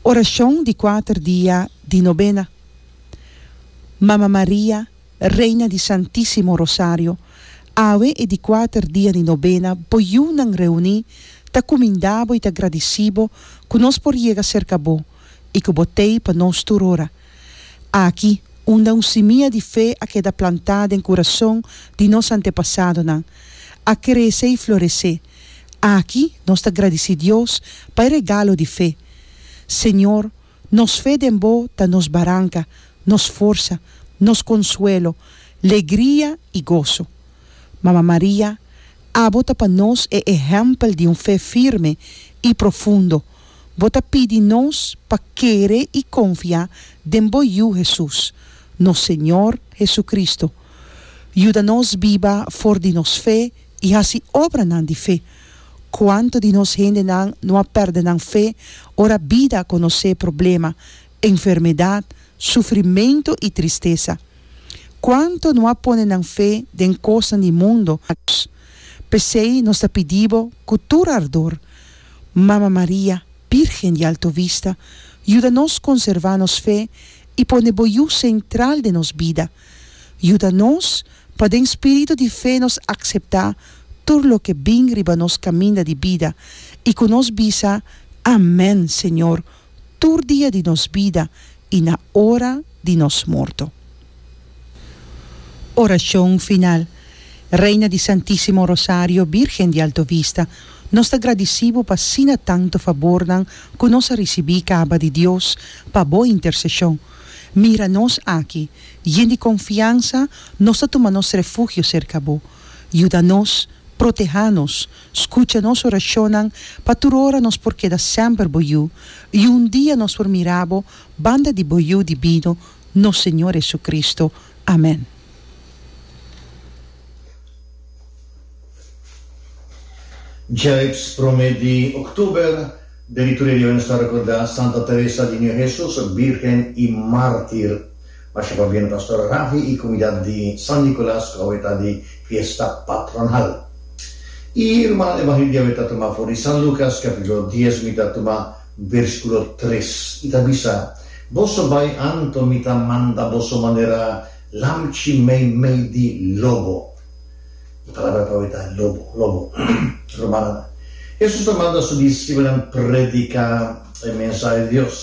Oracion di kuater dia di nobena. Mama Maria, Reina di Santisimo Rosario, awe e di kuater dia di nobena bo yunan reuni ta kumindabo i ta gradisibo ku nos por yega serka bo i ku bo tei pa nos tur ora. Aki unda un simia di fe a keda plantá den kurason di nos antepasadonan, a krese i floresé, Aki nos ta gradici Dios pa e regalo di fe. Señor, nos fe den Bo ta nos baranca, nos forsa, nos consuelo, legria y goso. Mama Maria, abo ta pa nos e ehempel di un fe firme y profundo. Bo ta pidi nos pa kere y confia den Bo Yu Jesús, nos Señor Jesucristo. Yuda nos biba for di nos fe. i hasi obranan di fe. Kuantu di nos hendenan no a pèrdè nan fe ora bida a konosé problema, enfermedat, sufrimentu i tristesa? Kuantu no a pone nan fe den kosnan di mundu? P'esei nos ta pidí bo ku tur ardor, Mama Maria, Bírgen di Alto Vista, yuda nos konservá nos fe i pone bo yu sentral den nos bida. Yuda nos pa den spiritu di fe nos akseptá tur loke bin riba nos kaminda di bida i ku nos bisa, Amèn, Señor, tur dia di nos bida i na ora di nos morto. Orashon final. Reina di Santísimo Rosario, Bírgen di Alto Vista, nos ta gradisí Bo pa asina tantu fabornan ku nos a risibí kaba di Dios pa Bo interseshon. Mira nos aki, yen di konfiansa, nos ta tuma nos refugio serka bo. Yuda nos, protehá nos, skucha nos orashonnan, pa tur ora nos por keda sèmper bo yu, i un dia nos por mira bo banda di bo Yu Dibino, nos Señor Hesukristu. Amèn. Djelips prome di Oktuber, Diriktoria di Obispado ta rekorda Santa Teresa di Niño Hesus, Birhen i Mártir. Masha pa bia na Pastor Ravi i komunidat di San Nikolas ku awe ta di fiesta patronal. E ruman evangelio di awe ta tuma for di San Lukas, kapítulo dies, mi ta tuma bersikulo tres. I ta bisa, Boso bai anto, mi ta manda boso manera lamchi meimei di lobo. E palabra pa hoy ta lobo, lobo. Rumannan, Hesus ta manda su disipelnan prediká e mensahe di Dios.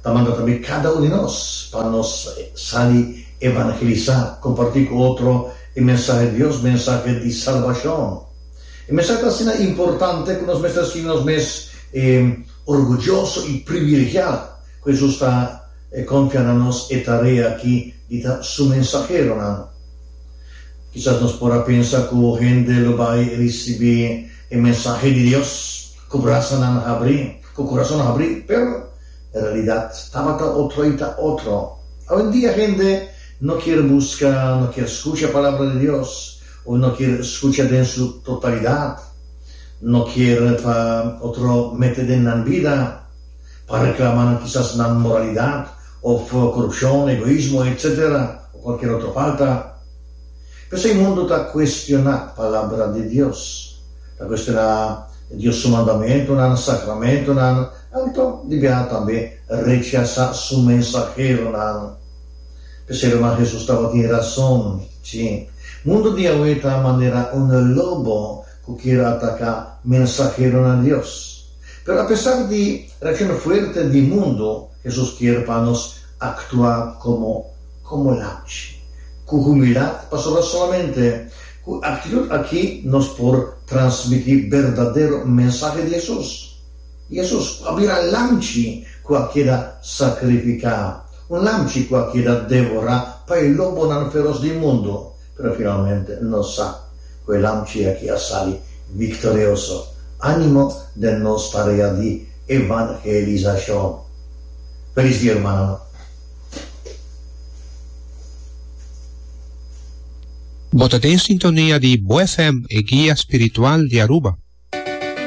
Ta manda tambe kada un di nos pa nos sali evangelisá, kompartí ku otro e mensahe di Dios, mensahe di salbashon. E mensahe ta asina importante ku nos mester sinti nos mes orguyoso i privilegiá ku Hesus ta konfia na nos e tarea aki di ta Su mensaheronan. Kisas nos por a pensa ku hende lo bai risibí e mensahe di Dios ku brasanan habrí, ku kurason habrí, pero e realidat tabata otro i ta otro. Awendia hende no kier buska, no kier skucha Palabra di Dios, òf no kier skucha den su totalidat. No kier pa otro mete den nan bida pa reklama kisas nan moralidat Of corupcion, egoismo, etc. O cualkier otro falta. P'esei mundo ta cuestiona Palabra di Dios. Ta cuestiona Dios Su mandamentonan, sacramentonan, anto di biaha tambe rechaza Su mensaheronan. P'esei Rma Jesus tabatin razon, ci. Mundo di awe ta manera un lobo cu kier ataca mensaheronan Dios. Pero apesar di reaccion fuerte di mundo, Hesus kier pa nos aktua komo komo lamchi ku humildat, pasobra solamente ku e aktitut aki nos por transmití berdadero mensahe di Hesus. Hesus a bira lamchi ku a keda sakrifiká, un lamchi ku a keda devorá pa e lobonan feros di mundu. Pero finalmente nos sa cu e lamchi aki a sali victorioso, animo den nos tarea di evangelisacion. Felis dia hermananan. Bo ta den sintonia di Bo FM, e guia spiritual di Aruba.